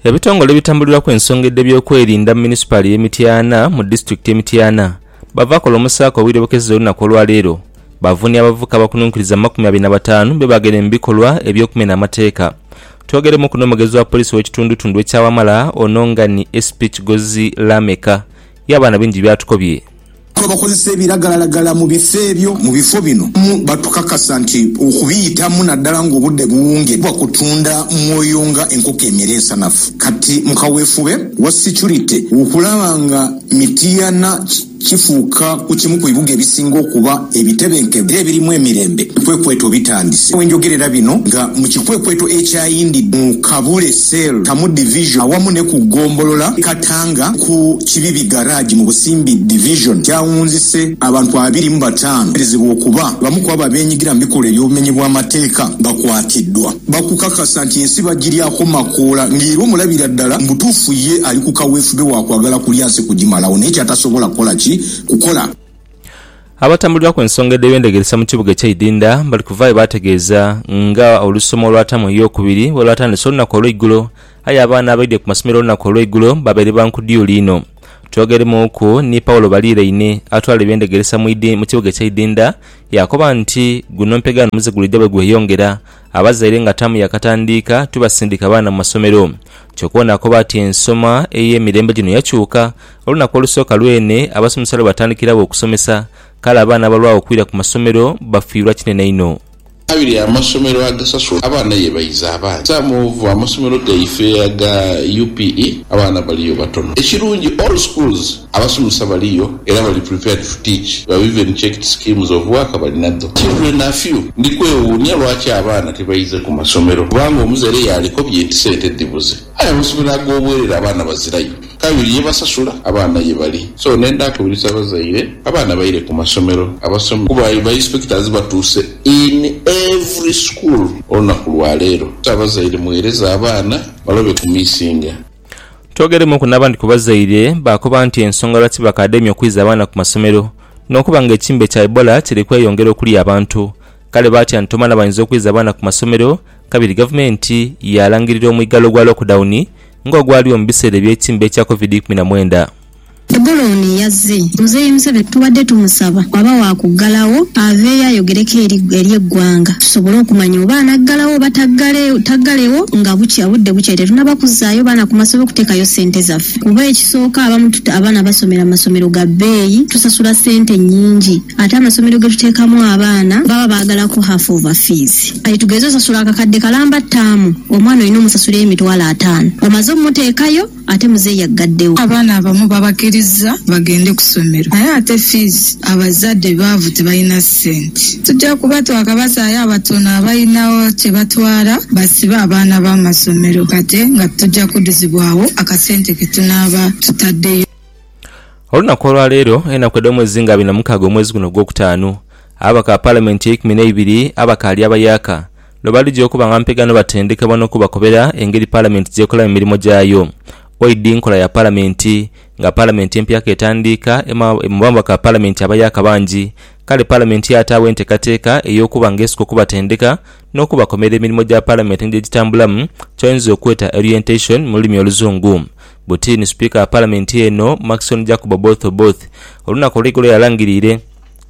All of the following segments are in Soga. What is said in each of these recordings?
Ebitongole ebitambuliraku ensonga edh'ebyokwerinda mu munisipaali ey'e Mityana mu disitulikiti y'e Mityana bava kola omusaaka obwire bukeziza olunaku olwaleero bavunia abavubuka abakununkiriza mu makumi abiri na bataanu bebageire mu bikolwa eby'okumena amateeka. Twogeraimuku n'omwogezi wa poliisi ow'ekitundutundu ekya Wamala ono nga ni SP Kigozi Lameka. Yaba na bingi by'atukobye. Abakozesa ebiragalalagala mu bifo ebyo mu bifo bino batukakasa nti okubiyitamu naddala ng'obudde buwungibwa kutunda mwoyo nga enkoko emere ensanafu. Kati mu kaweefube wa securite okulaba nga Mityana kifuuka ku kimu ku bibuga ebisinga okuba ebitebenkevu era ebirimu emirembe, ebikwekweto bitandise. Wenjogerera bino nga mu kikwekweto ekyayindidde mu Kabule. Cell, Kamu Division awamu ne ku Gombolola Katanga ku Kibibi Garage mu Busimbi Division kyawunzise abantu abiri mu bataanu abateberezebwa okuba bamu kwabo abenyigira mu bikolwa eby'obumenyi bw'amateeka bakwatiddwa bakukakasa nti ensi bagiryaku makoola nga era omulabira ddala mu butuufu ye ali ku kaweefube wa kwagala kulya nsi kugimalawo naye kyatasobola kukola ki kukola. Abatambulirwaku ensonga edh'ebyendegeresa mu kibuga ekye Idinda bali kuvaayo baategeeza nga olusomo olwatamu ey'okubiri bwe lwatandise olunaku olweigulo aye abaana abaidhye ku masomero olunaku olweigulo babaire ba nkudyuli inho. Twogeremuuku ni Paulo Baliiraine atwala ebyendegeresa mu kibuga ekye Idinda yaakoba nti guno mpegaano muze gulidha bwe gweyongera abazaire nga taamu yaakatandiika tibasindika baana mu masomero. Kyokubona akoba ati ensoma ey'emirembe gino yakyuka Olunaku olusooka lwene abasomesa lwe batandikiragho okusomesa, kale abaana abalwagho okwira ku masomero bafiirwa kinene inho. Abiri amasomero agasasula abaana ye baiza abangi. Some of amasomero gaife aga UPE abaana baliyo batono. Ekirungi all schools abasomesa baliyo era bali prepared to teach. We have even checked schemes of work balinadho. Children are few. Ndi kwewuunya lwaki abaana tibaize ku masomero kubanga omuzere yaaliko bye nti sente dhibuze. Aye amasomero ag'obwerere abaana bazirayo kabiri ye basasula abaana ye bali so nenda akubiriza abazaire abaana baire ku masomero abasome kuba ba inspectors batuuse in every school olunaku lwa leero so abazaire mughereze abaana balobe ku missinga. Twogeremuuku n'abandi ku bazaire baakoba nti ensonga lwaki bakademya okwiza abaana ku masomero n'okuba nga ekimbe kya Ebola kiri kweyongera okulya abantu Kale baatya nti omwana bwayinza okwiza abaana ku masomero, kabiri gavumenti yaalangirira omwigallo gwa lockdowni nga ogwaliwo mu biseera eby'ekimbe ekya covid ikumi na mwenda. Eggulo Oni yazze Muzeeyi Museveni tubadde tumusaba bwaba waakuggalawo aveeyo ayogereko eri eri eggwanga tusobole okumanya oba anaggalawo oba taggale taggalewo nga bukya budde bukya tetunaba kuzzaayo baana ku masomero kutekayo ssente zaffe kuba ekisooka abamu abaana basomera mu masomero ga bbeeyi tusasula ssente nnyingi Ate amasomero ge tuteekamu abaana baba baagala kuhafa ova fiizi. Kati tugeze osasula akakadde kalamba ttaamu, omwana olina omusasula emitwalo ataano omaze omuteekayo ate muzeeyi aggaddewo. Abaana abamu babakirizza bagende ku ssomero naye ate fiizi abazadde baavu tebalina ssente. Tujja kuba twakabazaayo abatono abalinawo kye batwala basibe abaana bo amasomero kati nga tujja kuduzibwawo akasente ke tunaaba tutaddeyo. Olunaku olwaleero enaku edhomwezi nga abiri na mukaaga omwezi guno ogwokutaanu, ababaka ba palamenti eikumi neibiri abakaali abayaaka lwebalija okuba nga mpega nobatendekebwa nokubakobera engeri palamenti gyekolamu emirimo gyayo oidi nkola ya palamenti nga palamenti empya ketandiika emu babaka ba palamenti abayaaka bangi kale palamenti yataagho entekateka eyokuba nga esoka okubatendeka nokubakomera emirimo gya palamenti engeri gyegitambulamu kyoyinza okweta orientation mululimi oluzungu. buti ni Sipiika wa Palamenti eno, Maxon Jacob Oboth Oboth, olunaku olw'eigulo yalangiriire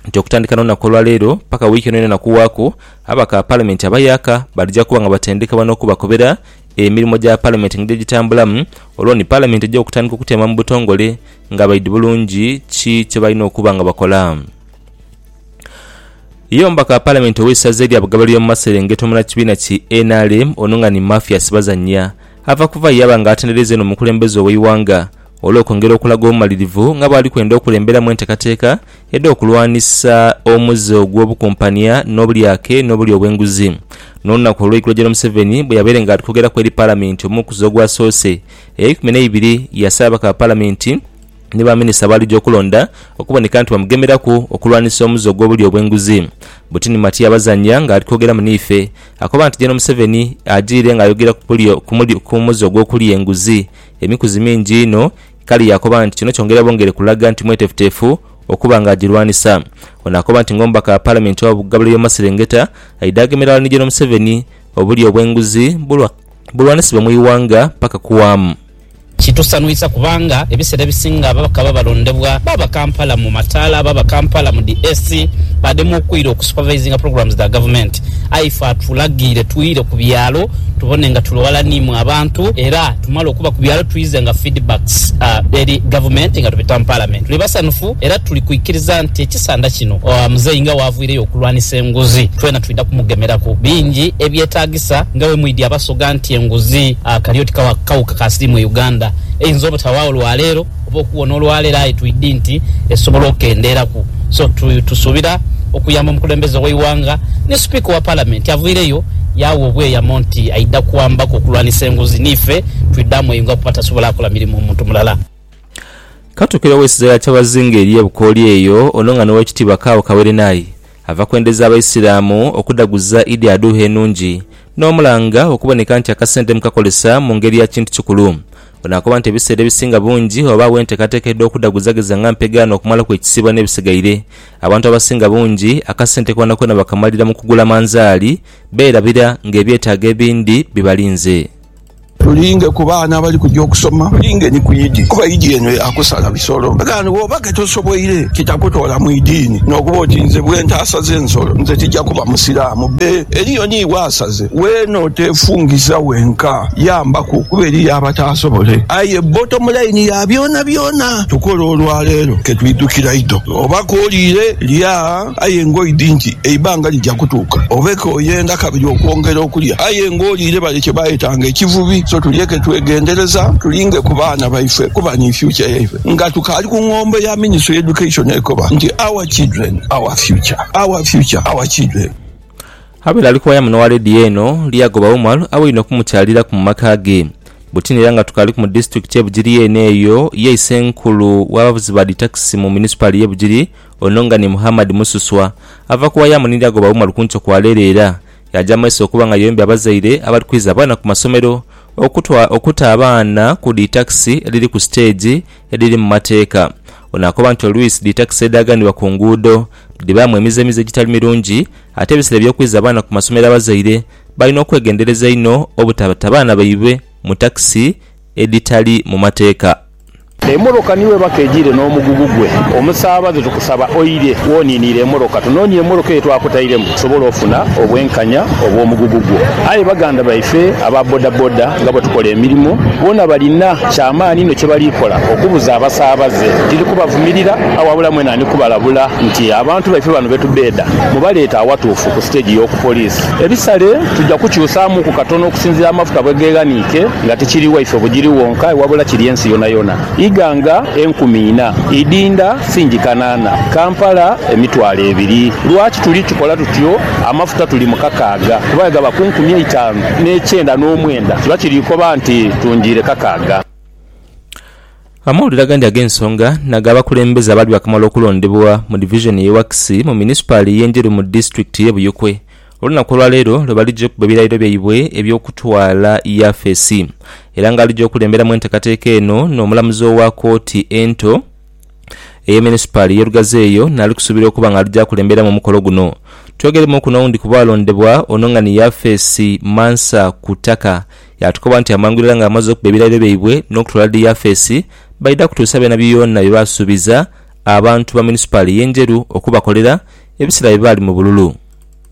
nti okutandika n'olunaku olwa leero paka wiiki eno yonayona kuwaaku ababaka ba Palamenti abayaaka balija kuba nga batendekebwa n'okubakobera emirimo gya Palamenti engeri gyegitambulamu olwo ni Palamenti egye okutandika okutyaama mu butongole nga baidhi bulungi ki kyebalina okuba nga bakola. Ye omubaka wa Palamenti ow'eisaza erya Bugabale y'omu maserengeto munakibiina ki nrm ono nga ni Mathias Bazannya Ava kuva ye yaba nga atendereiza inho omukulembeze ow'eighanga olw'okwongera okulaga obumalirivu nga bwali kwenda okulemberamu enteekateeka edh'okulwanisa omuze ogw'obukumpania n'obulyake n'obulya obw'enguzi. N'olunaku olw'eigulo General Museveni bwe yabaire nga ali kwogeraku eri Palamenti omukuzi ogwasoose ey'eikumi n'eibiri yasaba ababaka ba Palamenti ni ba minisita abaalija okulonda okuboneka nti bamugemeraku okulwanisa omuze ogw'obulya obw'enguzi. Butini Matia Bazanya nga ali kwogeramu n'ife Akoba nti Gen Museveni ajiire nga ayogera ku muze ogw'okulya enguzi emikuzi mingi inho kale yaakoba nti kino kyongera bwongere kulaga nti mwetefutefu okuba nga agirwanisa. Ono akoba nti ng'omubaka wa Palamenti owa Bugabuliro y'omumaserengeta aidha agemera ghala ni Gen Museveni obulya obw'enguzi bulwanisibwe mu ighanga paka kuwaamu. Kitusanhuisa kubanga ebiseera ebisinga ababaka baba balondebwa baaba Kampala mu mataala, baaba Kampala mu dhi AC, baadhema okuira oku supervisinga programs dha gavumenti. Aye ife atulagiire twire ku byalo tubone nga tuli ghala ni mwe abantu era tumale okuba ku byalo twize nga feedbacks eri gavumenti nga tubita mu palamenti. Tuli basanhufu era tuli kwikiriza nti ekisanda kino Muzeeyi nga waavwireyo okulwanisa enguzi twena twidha kumugemeraku. Bingi ebyetagisibwa. Kisa nga bwe mwidhi abasoga nti enguzi kali oti kawuka ka siriimu e Uganda eyinza obutawaagho lwa leero oba okuwona olwa leero aye twidhi nti esobola okendeeraku so tusuubira okuyamba omukulembeze ow'eighanga ni Sipiika owa Palamenti avaireyo yaawa obweyamo nti aidha kuwambaku okulwanisa enguzi niife twidhaamu eyo nga kuba tasobola kola mirimu muntu mulala. Katuukire ow'esiza ya Kyabazinga ery'e Bukooli eyo ono nga n'Owekitiibwa Kaawo Kaweerenaye Ava kwendeza Abaisiraamu okudaguza Idi Adhuha enungi, n'omulanga okuboneka nti akasente mukakolesa mu ngeri ya kintu kikulu. Ono akoba nti ebiseera ebisinga bungi ghabagho enteekateeka edh'okudhaguzageza nga mpega n'okumalaku ekisiibo n'ebisigaire. Abantu abasinga bungi akasente koonakoona bakamalira mu kugula manzaali, beerabira ng'ebyetaago ebindi bibalinze. Tulinge ku baana abali kuja okusoma, tulinge ni ku idi, kuba idi eno ya kusala bisolo. Ndagaano bw'oba ke tosoboire, kitakutola mu idiini. N'okuba oti nze bwe ntaasaze ensolo, nze tija kuba Musiraamu. Bbe, eriyo ni bw'asaze. Weena oteefungiza wenka, yambaku, kuba eriyo abataasobole. Aye bottom line ya byonabyona, tukola olwaleero ke twidhukira idho. Oba kooliire, lya. aye ng'oidhi nti eibanga lija kutuuka obe k'oyenda kabiri okwongera okulya aye ng'oliire bale kye bayetanga ekivubi. So tulyeke twegendereza tulinge ku baana baife kuba ni future yaife. Nga tukaali ku ngombo ya Ministry ya Education ekoba nti Our children, our future, our future, our children. Abaire ali kwaya muno wa leediyo eno, Lyagoba Umar abaine okumukyaliraku mu maka ge. Butini era nga tukaaliku mu disitulikiti y'e Bugiri yeene eyo, ye Isenkulu w'abavuzi ba dhi takisi mu munisipaali y'e Bugiri, Ono nga ni Muhammad Mususwa ava ku Wayamuni lya goba Umar kunkyo kwa leero era yaja mu maiso okuba nga yombya abazaire abali kwiza abaana ku masomero okutwa okuta abaana ku dhi takisi edhiri ku siteegi edhiri mu mateeka. Ono akoba nti oluisi dhi takisi edhaaganibwa ku nguudo dhibaamu emize mize egitali mirungi ate ebisera eby'okwiza abaana ku masomero abazaire balina okwegendereza inho obutabata baana baibwe mu takisi edhitali mu mateeka. Emoroka ni weba kejire n'omugugu gwe. Omusaabaze tukusaba oire woniiniire emoroka tunoonie emoroka eyo twakutairemu tusobole ofuna obwenkanya obw'omugugu gwo. Aye baganda baife aba bodaboda nga bwetukola emirimo boona balina kyamaani inho kyebali kola okubuza abasaabaze. Tiri kubavumirira aye wabula mwena ndi kubalabula nti abantu baife bano betubeeda mubaleete awatuufu ku siteegi y'oku poliisi. Ebisale tuja kukyusaamuuku katono okusinziira amafuta bwegeghaniike. nga tikiri waife bugiri wonka wabula kiri ensi yonayona. Ighanga enkumi ina idinda fingi kanaana, Kampala emitwalo ebiri. Lwaki tuli tukola tutyo? Amafuta tuli mu kakaaga kuba bwegaba ku nkumi eitaanu n'ekyenda n'omwenda kiba kiri koba nti tungiire kakaaga. Amawulire agandi ag'ensonga naga abakulembeze abaali baakamala okulondebwa mu divizoni y'e Wakisi mu munisipaali y'e Njeru mu disitulikiti y'e Buyikwe Olunaku olwa leero lwe balija okuba ebirayiro byaibwe eby'okutwala Yafesi era nga alija okulemberamu enteekateeka eno n'omulamuzi owa kooti ento eye munisipaali ye Lugazi eyo naali kusuubirwa okuba nga alija akulemberamu omukolo guno. Twogeremuuku n'owundi ku baalondebwa ono nga ni Yafesi Mansa Kutaka yaatukoba nti amangu irala nga bamaze okuba ebirayiro byaibwe n'okutwala dhi Yafesi baidha kutuusa byonabyona bye baasuubiza abantu ba munisipaali ye Njeru okubakolera ebiseera bye baali mu bululu.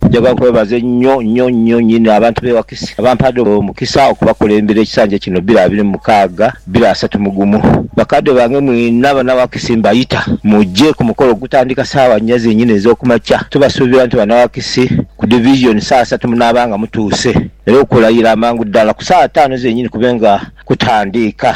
Njaga kwebaza enyo nyo nyo nyini abantu be Wakisi abampaade omukisa okubakulembera ekisanja kino bira abiri mu mukaaga bira asatu mu gumu. Bakadde bange mwena abana Wakisi mbayita muje ku mukolo ogutandika saawa nya zenyini ezokumakya. Tubasuubira nti bana Wakisi ku Division saawa satu munaaba nga mutuuse era okulayira amangu dala ku saawa taanu zenyini kube nga kutandiika.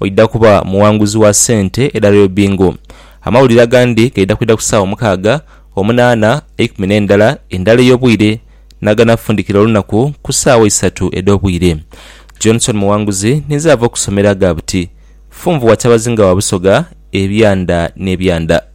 Oidha kuba mughanguzi wa sente edha Royal Bingo. Amawulire agandi gaidha kwidha ku saawa mukaaga, omunaana, eikumi n'endala, endala ey'obwire, n'aganafundikira olunaku ku saawa isatu edh'obwire. Johnson Mughanguzi ninze ava okusomero agha buti. Funvu wa Kyabazinga wa Busoga ebyanda n'ebyanda.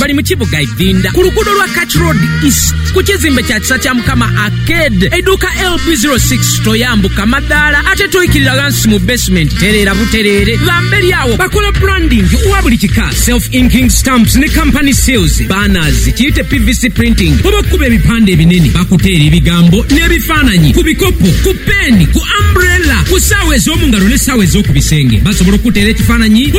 Bali mu kibuga Idhinda ku luguudo lwa Kach Road East ku kizimbe kya Kisa Kya Mukama Arcade, eiduuka LB ziro six. Toyambuka madaala ate toikirira ghansi mu basement, tereera butereere gha mberi agho. Bakola branding wa buli kika, self inking stamps ni company seals, banners, kiite pvc printing oba okukuba ebipande ebinene. Bakuteera ebigambo n'ebifaananyi ku bikopo, ku peeni, ku umbrella, ku saawa ez'omu ngalo n'essaawa ez'oku bisenge. Basobola okukuteera ekifaananyi ku.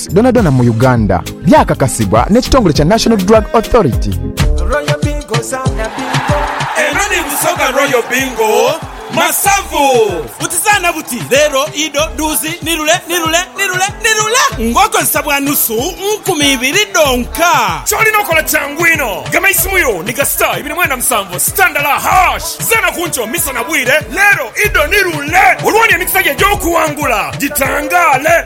dhonadhona mu Uganda, byakakasibwa n'ekitongole kya National Drug Authority. Eno ni Busoga Royal Bingo Masavu. Butizaana buti leero, ido, duuzi, ni lule, ni lule, ni lule, ni lule ng'okozesa bwa nusu nkumi ibiri dhonka. Ky'olina okola kyangu inho. Gema eisimu yo ni ga star ibiri mwenda musanvu star ndala hash. Zaana ku nkyo, misa na bwire, leero, ido, ni lule olwooni emikisa gyo egy'okuwangula gitangaale.